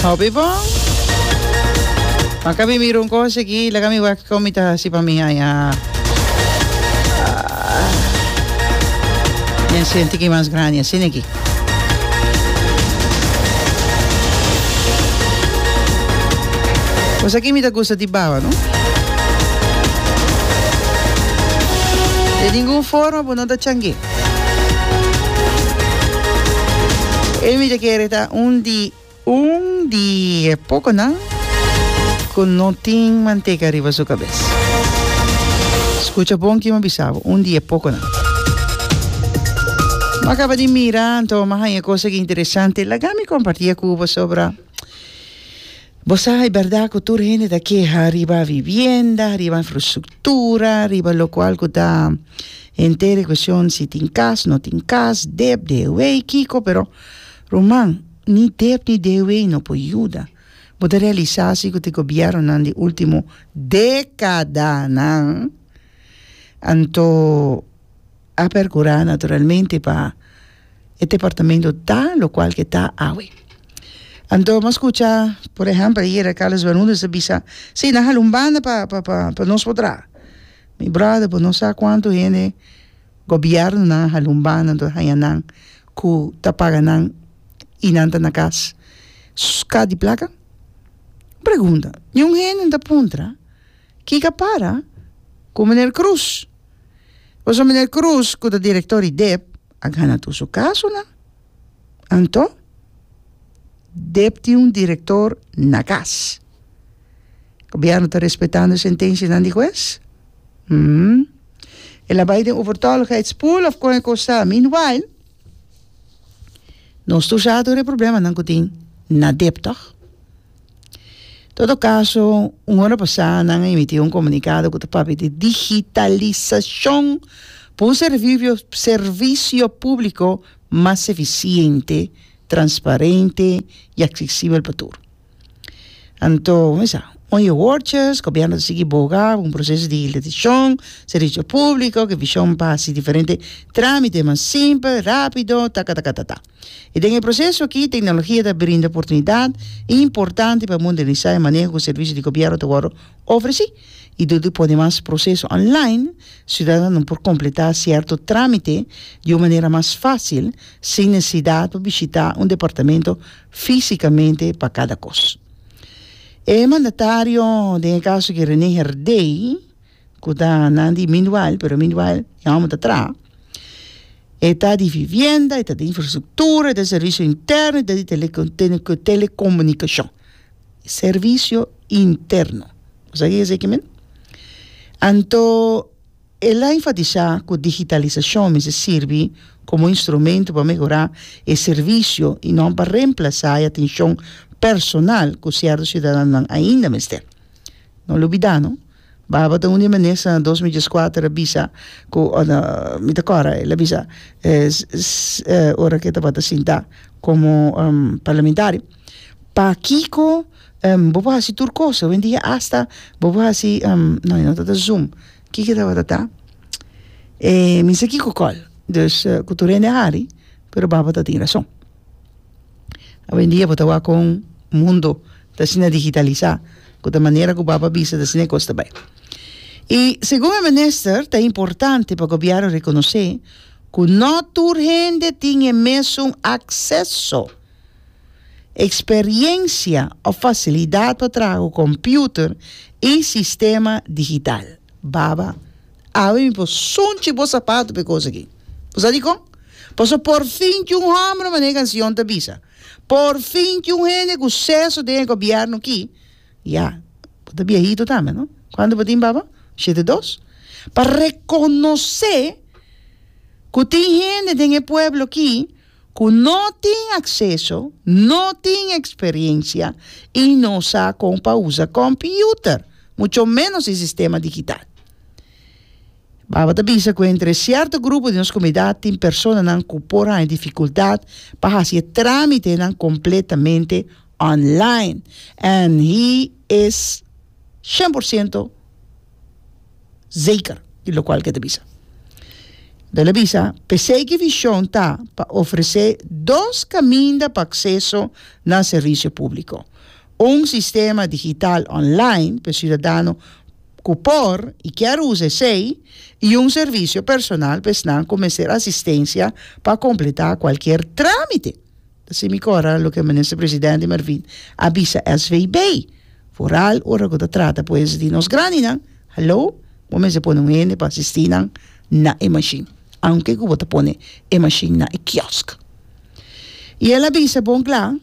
Hopi bon. Maka mi mira un cosa aquí, laga mi wak con mi ta hasi pa mi ay. Ah. Ah. Mi siente que más grande así aquí. Pues aquí mi ta gusta di baba, ¿no? De ningún forma, pues no ta changue. E mi ta kere ta un di un di e pokonan ku no tin manteka riba su kabes. Skucha bon kiba mi a bisa bo, un di e pokonan. Mi a kaba di mira anto mi a haña kos aki interesante. Laga mi komparti e ku bo sobra Bo sa e bèrdat ku tur hende ta keha riba vivienda, riba infrastruktura, riba lokual ku ta henter e kushon si tin kas, no tin kas, dep, dewei, kiko, pero ruman, ni dep ni dewei no por yuda. Bo ta realisá si ku ta e gobièrnunan di último dékadanan anto, A percura naturalmente pa e departamento ta locual ke ta awe. Anto nos scucha por ehempel ayer Carlos Bermudez a bisa si nan hala un banda pa pa pa pa nos por traha. Mi brother bo no sa cuanto hende gobiernonan a hala un banda anto a haya nan cu ta paga nan y nan ta na cas scat di placa? Pregunta. Niun hende no ta puntra. Kika para ku Meneer Kroes? Paso Meneer Kroes ku ta direktor di dep a gana tur su kasonan. Anto dep tin un direktor na kas. Gobièrnu ta respetando sentenshianan di hues? Hm. El a bai den overtolligheidspool òf kon e kos ta? Meanwhile nos tur sa tur e problemanan ku tin na dep tòg. Todo caso, un ora pasá nan a emití un comunicado cu ta papia di digitalisacion pa un servicio servicio público mas eficiente, transparente y accesibel pa tur. Anto, mi sa, oi e woordjes, gobierno ta sigui boga un proceso di digitalisacion, servicio público cu e vision pa haci diferente tramitenan simpel, rápido, takatatatata. I den e proseso aki, teknologia ta brinda oportunidat importante pa modernisá e maneho ku servisio di gobièrnu ta wòrdu ofresí. I dor di pone mas proseso online, siudadanonan por kompletá sierto trámite di un manera mas fásil, sin nesesidat pa bishitá un departamento físikamente pa kada kos. E mandatario, den e kaso aki René Herdey, ku ta nan di meanwhile pero meanwhile e hombro ta traha e ta di vivienda e ta di infrastructura e ta di servicio interno e ta di telecomunicacion servicio interno u sa ke yesa aki men anto el a enfatisa ku digitalisacion mester sirbi komo instrumento pa mehora e servicio y no pa remplasa e atencion personal ku cierto ciudadanonan ainda mester no lo bida no Baba ta un di menes na dos mi dieskuater a bisa ku ora mi ta kòrda el a bisa ora ku e tabata sinta komo parlamentario pakiko bo por hasi tur kos hoendia asta bo por hasi no e no tabata zoom kiko e tabata ta e mi no sa kiko kòl dus ku tur hende a hari pero baba tatin rason. Awendia bo ta wak kon mundo ta asina digitalisa ku ta manera ku papa bisa ta asina e kos ta bai. I segun e minister ta importante pa Gobièrnu rekonosé ku no tur hende tin e mesun akseso, eksperiensia òf fasilidat pa traha ku kompiuter i sistema digital. Baba. Awe mi por sunchi bo sapato pa e kos aki. Bo sa dikon? Pasobra por fin tin un hòmber, manera e kanshon ta bisa. Por fin tin un hende ku seso den e gobièrnu aki. Ya, bo ta biahitu tambe, no? Kuantu bo tin, papa? Shete dos? Pa rekonosé ku tin hende den e pueblo aki. ku no tin akseso, no tin eksperensia i no sa kon pa usa kòmpiuter, mucho ménos e sistema digital. Baba ta bisa ku entre e sierto grupo di nos komunidat tin personanan ku por haña difikultat pa hasi e trámitenan kompletamente online and he is shen por siento. Zeker di lokual ke ta bisa. Bel a bisa, p'esei ki vishon ta pa ofresé dos kaminda pa akseso na servisio públiko, un sistema digital online p'e siudadano ku por i kier usa esei i un servisio personal p'esnan ku mester asistensia pa kompletá kualkier trámite. Sin mikora loke Minister Presidente Marvin a bisa SVB, vooral ora ku ta trata pues di nos grandinan, hallo, bo mester pone un hende pa asisti nan na e mashin, aunke ku bo ta pone e mashin na e kiosk. I el a bisa bon kla,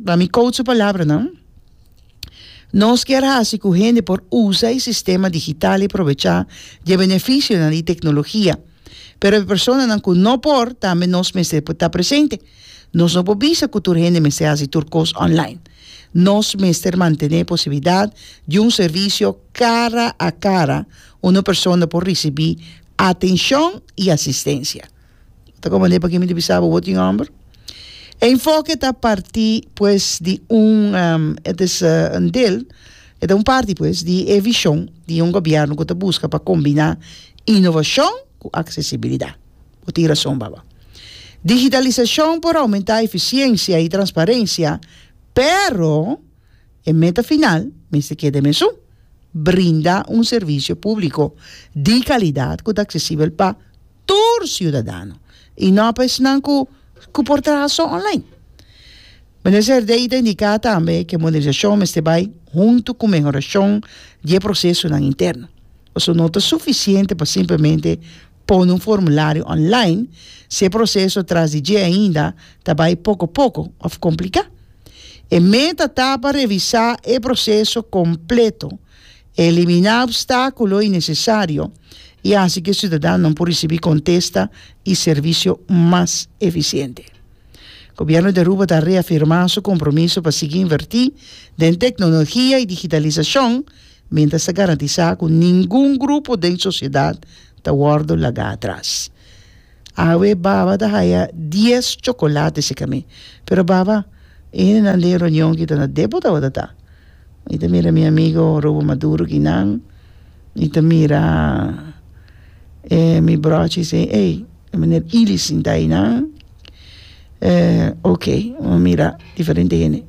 ta mi koud su palabranan, Nos kier hasi ku hende por usa e sistema digital i probecha di e benefisionan di teknologia, Pero e personanan ku no por, tambe nos mester por ta presente. Nos no por bisa ku tur hende mester hasi tur kos online. Nos mester mantené e posibilidat di un servisio kara a kara unda persona por risibí atenshon i asistensia. Ta kon manera pa kimi ta bisa bo bo tin hòmber? E enfoke ta partí pues di un et is un deel, e ta un parti pues di e vishon di un gobièrnu ku ta buska pa kombiná Inovashon ku aksesibilidá. Bo tin rason, baba. Digitalisashon por oumentá efisiensia i transparensia, pero e meta final mester keda e mesun, brinda un servisio públiko di kalidat ku ta aksesibel pa tur siudadano i no pa esnan ku por traha so online. Mene Zerdei ta indiká tambe ku e modernisashon mester bai huntu ku mehorashon di e prosesonan interno. Pasobra no ta sufisiente pa simplemente pone un formulario online si e proceso tras di dje ainda ta bai poco poco of complica. E meta ta pa revisa e proceso completo, elimina obstaculo innecesario y haci cu e ciudadanonan por ricibi contesta y servicio mas eficiente. Gobierno di Aruba ta reafirma su compromiso pa sigui inverti den tecnologia y digitalisacion, mientras ta garantisa cu ningun grupo den sociedad ta wordo laga atras. Awe Baba ta haya dies chocolate seca mi, pero Baba, e hendenan den reunion ki ta na depo tabata ta. Mi ta mira mi amigo Rubo Maduro ki nan, mi ta mira e mi brochi si ey e meneer Ili sinta ayinan, e ok, mi mira diferente hende.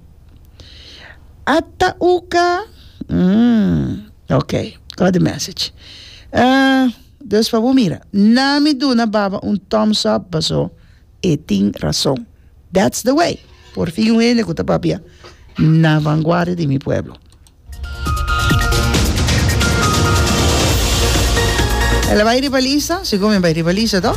Ata uka mm ok got the message dus pa bo mira na mi duna baba un thumbs up paso e tin rason that's the way por fin un hende ku ta papia na vanguardia di mi pueblo el a bai riba lista segun mi a bai riba lista toh.